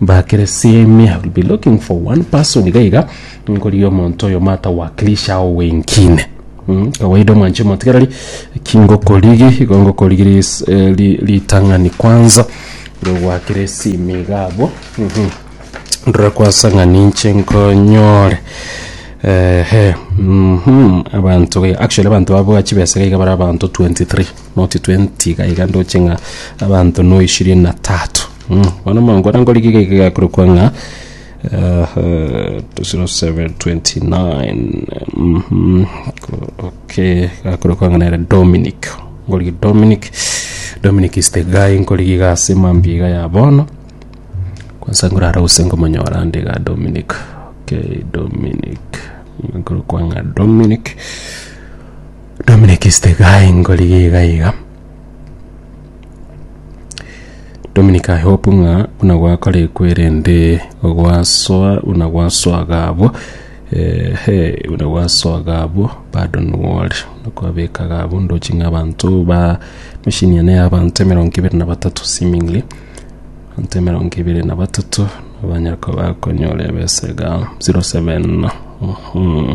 Bakeresime, I will be looking for one person iga iga, nkorigia omonto oyo matawakilisha ao wengine. Mm, Kawaida omwanche omotigareri, kingokorigi, igo ngokorigi ris- eh, ri- ritang'ani kwanza, rogwakeresime iga abwo. Mhm. Ndore kwansa ng'a ninche nkonyore ehe mhm abanto be actually abanto babua chibesa iga iga bare abanto 23 not 20 iga iga ndoche ng'a abanto noishirini na tatu Bono omonto ore nkorigia geke gekorokwa ng'a gekorokwa ng'a nere Dominic. Nkorigia Dominic, Dominic is the guy nkorigia iga ase mambia iga ya bono. Kwansa nkorara gose nkomonyora ande iga Dominic, okay Dominic, okorokwa ng'a Dominic, Dominic is the guy nkorigia iga iga. Dominic I hope ng'a buna gwakorekwa erende gwasoa buna gwasoa gabo eh, he buna gwasoa gabo bado nwore kwabeka gabo ndochi ng'a abanto ba machine ene ya abanto emerongo ebere na batato seemingly abanto emerongo ebere na batato abanyako bakonyora ebesa iga 07 mhm.